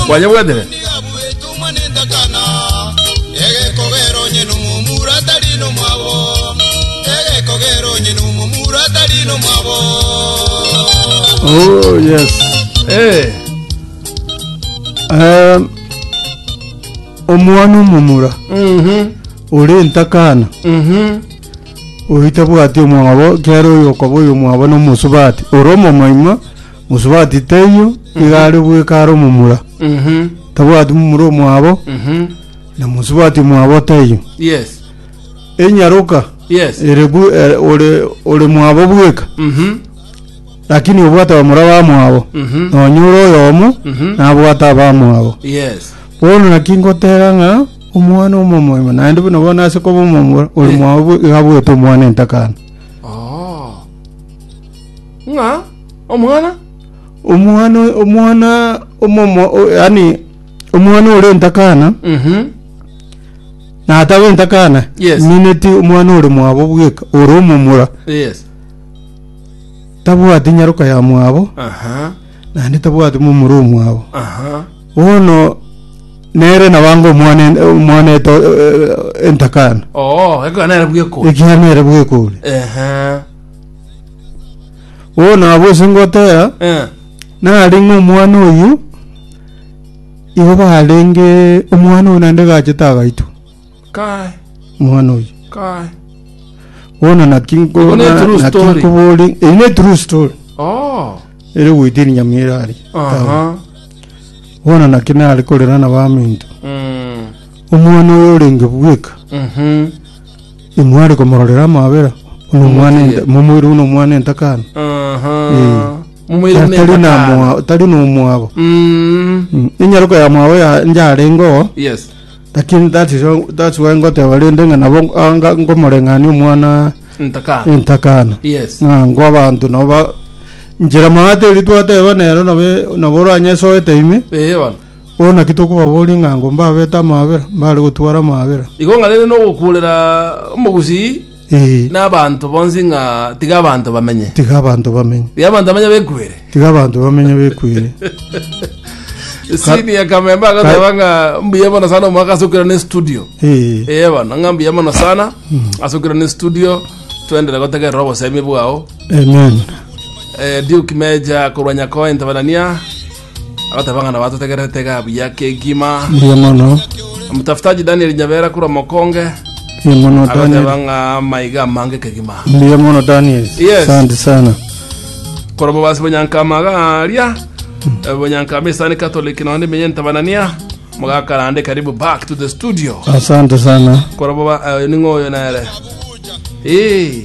Kwanyebwetere? Oh, yes. Eh, Um, omwana omomura mhm, ore entakana mhm. oitabwati omwabo kero oyo okaba oyo omwabo nomosubati ore omomoimo Mosubati teiyo, nigo are bweka are omomura, Mhm. tabwati momura omwabo, Mhm. na mosubati omwabo teiyo. Yes. Enyaroka Yes. ere bwe- ere- ore ore mwabo bweka, Mhm. lakini obwate bamura bamwabo, Mhm. nonya ore oyomo Mhm. nabwate abamwabo. Yes. Bono naki ngoteba ng'a omwana omomoima naende buna bono ase koba omomura ore Eh. mwabo bwe- iga abwete omwana entakana. Oh. ng'a omwana Omwana, omwana omomo, o- yani omwana ore entakana, Mhm. nataba entakana, Yes. mineti omwana ore mwabo bweka, ore omomura, yes tabwati nyaroka ya mwabo, aha naende tabwati momura omwabo. aha Bono nere nabange omwana en- omwana eto eh, entakana, oo ekana era bwekori ekiagera bwekore. ehe Oo nabo ase ngotera Eh. narenge omwana oyu igo barenge omwana oyo naende gachete agaitwa Kai, omwana oyu kai. bono naki nko- Iko ne true naki story. nkobori eye ne true story Oh. ere goitiri nyamira ari Aha. bono naki nare korera na baminto Mm. omwana oyo orenge bweka Mhm. Imware komororera amabera bw'omwana Omotiye. enta- momoirwe buna omwana entakana. Aha. Eh. Momoire buna Tari na etakana. moa- tari na omwabo. Mm. Mm. Enyaruko ya mwabo ya njarenge oo, Yes. lakini that is why- that's why ngoteba rende ng'a nabo ah, nga- ngomoreng'ania omwana Ntakana. entakana. Yes. Ng'a ngo abanto nabo ba- njera maate eri twateba nero nabe- nabo oranyesoete ime. Eh, bana. Oo naki tokobaboria ng'a ango mbabete amaabera, mbare gotwara amaabera? Igo ng'a rende nogokuurera omogusii Ee, na abanto bonsi ng'a tiga abanto bamenye. tiga abanto bamenye, Tiga abanto bamenye bekwere. tiga abanto bamenye bekwere. Sini ya Kamembe agoteba ng'a mbuya mono sana omwaka asukire ne studio. Ee, Eye bono ng'a mbuya mono sana asukire ne studio twendere gotegerera obosemi bwao. amen. Eh, Duke Meja korwa Nyakoe Ntabarania Agateba ng'a nabatotegererete iga buya kegima. Mbuya mono. Omotafutaji Daniel Nyabera korwa Mokonge Mbuya mono agateba Daniel. ng'a maiga amange kegima. Mbuya mono Daniel. Yes. Asante sana. Korwa Mobasi Bonyankama garia eh, Bonyankama Isani Catholic nonya nimenye ntabanania mogakarande karibu back to the studio Asante sana. korwa boba eh, ning'o oyo nere Eh,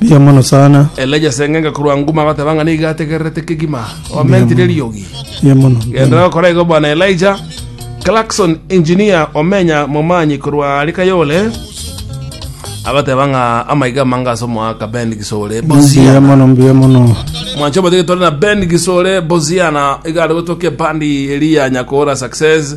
Mbuya mono sana. Elija seng'enge korwa nguma agateba ng'a nigo ategererete kegima omentire eriogi Mbuya mono. gendera gokora igo bwana elija clarkson engineer omenya momanyi korwa are kayole agateba ng'a amaiga amange ase omoaka ben gisore Mbuya bosiana mono, mbuya mono. mwancho omotige tore na ben gisore bosiana iga are gotokia bandi eri ya nyakora success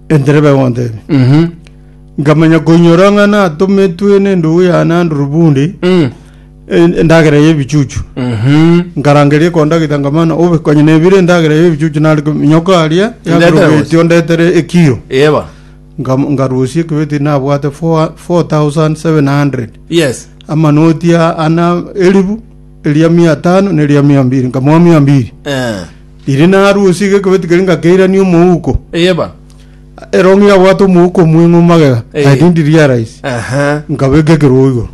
Entereba egontebia, Mhm. nkamanya koinyora ng'a natometwe nendugu yane Andrew Bundi Mm. en- endagera y'ebichuchu. Mhm. nkarangeria ekondagita nkamana obe konya nebire endagera y'ebichuchu nari nyoka aria Ndetera yagirogeti gose. ondetere ekiro Yeba. Ngam- ngarusia ekibeti nabwate 4700 Yes. amanoti a- ana elibu eria mia tano neria mia mbiri nkamoa mia mbiri Eh. Riria narusie egekebe tikeria ngakeirania omouko. Eyeba. Ere ong'ira abwate omouko omweng'u magega, Eh. I didn't realize. Aha. Nkabeka ekerogo igoro.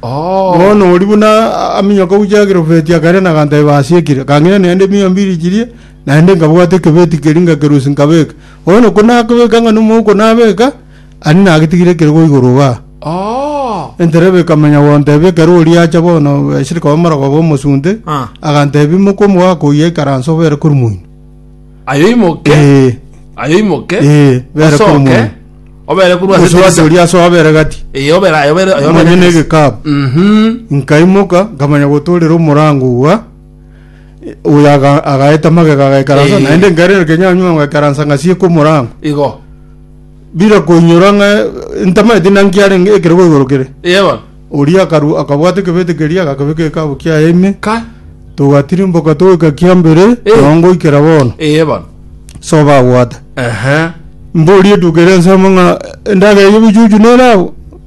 Oh. Bono oria buna a- aminyoka gochia girobeti akairana aganteba asiekire. Akang'ira naende mia mbiri chiria, naende nkabwata ekebeti keria ngakerusia nkabeka. Bono ko nakebeka ng'a nomouko nabeka, Ani nagetigire ekerogo igoro iga. Entereba ekamenya gontebia ekero oria acha bono bwesire koba morogoba omosunte, agantebia, Imoka omogaka oyio aikare anse obere korwa moino. Aye oimoke, Ee, aye oimoke, ee, bere osoke, korwa moino. obere korwa ase Omosuate dirisa. oria asoa abere gati. Ee, obere aye, obere- aye obere Omanye dirisa. negekabu. Mhm. Nkaimoka, nkamanya gotoorera omorango igwa, oyo aga- agaeta magega agaikaransa, Ee. naende nkairera kenyaanywa ngoikaransa ngasieka omorango. Igo. Bira koinyora ng'a entama eti naki yarenge ekerogo igoro kere. Iye bono. Oria akaru akabwata ekebete keria agakebeka ekabo kiaye ime, Kai. togatirimboka togoika kiambere, Eh. nonya ngoikera bono. Iye bono. Soba agwate. Ehe. Mborie etuko eria nsemo ng'a endagera y'ebichuchu nere abwo.